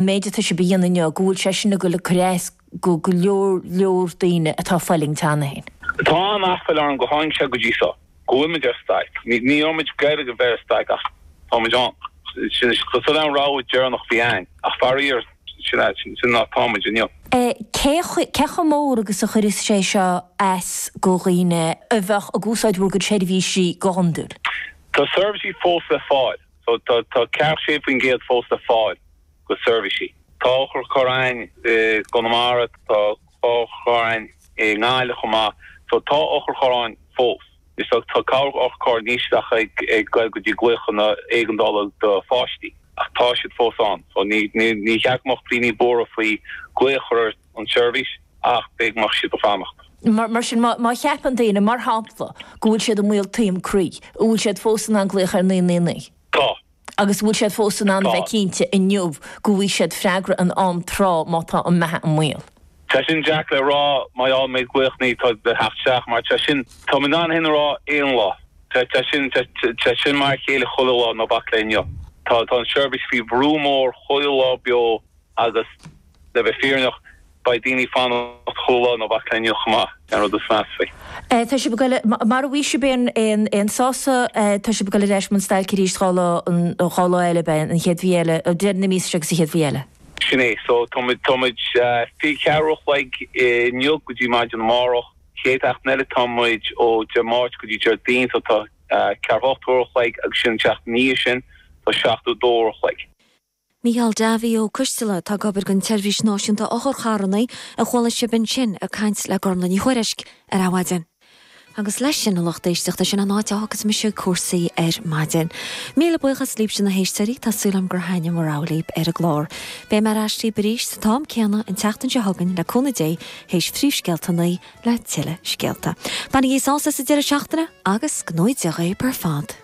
méid atá sibh a dhéanamh inniu, go bhfuil sé sin ag dul ag cur as go go leor leor daoine atá ag fulaingt cheana féin. Tá an-aiféala orm gur tháinig sé go dtí seo, go bhfuil muid ar stailc. Ní raibh muid ag iarraidh a bheith ar stailc ach tá muid ann. Sin an rogha deireanach a bhí againn ach faraor sin é, sin an áit atá muid inniu. Cé cé chomh mór agus a chuireas sé seo as go dhaoine a bheadh ag úsáid bhur gcuid seirbhísí go hiondúil? Tá seirbhísí fós le fáil. So, tá 46 faoin gcéad fós le fáil go seirbhísí. Tá otharcharr ann i gConamara, tá otharcharr ann i nGaillimh chomh maith. So, tá otharcharr ann fós. Is dócha tá cabhrach otharcharr níos lú ag dul go dtí glaochanna éigeandála do pháistí, ach tá siad fós ann. So, níor cheart go mbeadh daoine buartha faoi glaoch a chur ar. an tseirbhís ach b'fhéidir go mbeadh siad ag fanacht. Mar sin, má cheapann daoine, mar shampla, go bhfuil siad i mbaol taom croí, an bhfuil siad fós in ann glaoch ar 999? Tá. Agus an bhfuil siad fós in ann a bheith cinnte inniu go bhfaighidh siad freagra in am trátha má tá a mbeatha i mbaol? Tá sin deacair le rá, mar gheall méid glaoch 999 atá ag teacht isteach, mar tá sin, táim in ann sin a rá aon lá, tá sin, tá sin mar a chéile chuile lá, ná bac le inniu. Tá an tseirbhís faoi bhrú mór chuile lá beo. Agus le bheith fírinneach, beidh daoine ag fanacht chuile lá ná bac le inniu chomh maith, an rud is measa faoi. Tá sibh ag dul, mara bhfaighidh sibh aon sásamh, tá sibh ag dul ar ais i mbun stailc arís dhá lá, dhá lá eile, beidh an chéad mhí eile, deireadh na míosa seo agus an chéad mhí eile. Sin é. So, tá muid, tá muid fiche ceathair uair a chloig inniu go dtí maidin amárach. Chéad sheachtain eile tá muid ó Dé Máirt go dtí Déardaoin, so tá ceathracha ocht uair a chloig agus ansin an tseachtain ina dhiaidh sin tá seachtó dó uair a chloig. Mícheál Davy Ó Coistealla atá ag obair don tSeirbhís Náisiúnta Otharcharranna a chuala sibh ansin ag caint le Gormlaith Ní Thuairisg ar Adhmhaidin. Agus leis sin, a lucht éisteachta, sin an áit a fhágfas mise cúrsaí ar maidin. Míle buíochas libhse na héisteoirí, tá súil agam gur thaitin a raibh libh ar an gclár. Beidh mé ar ais libh arís sa t-am céanna an tseachtain seo chugainn le cúnamh Dé théis phríomhscéalta a naoi le tuilleadh scéalta. Bainigí sásamh as an deireadh seachtaine agus go ngnóthaí Dia dhaoibh ar fad.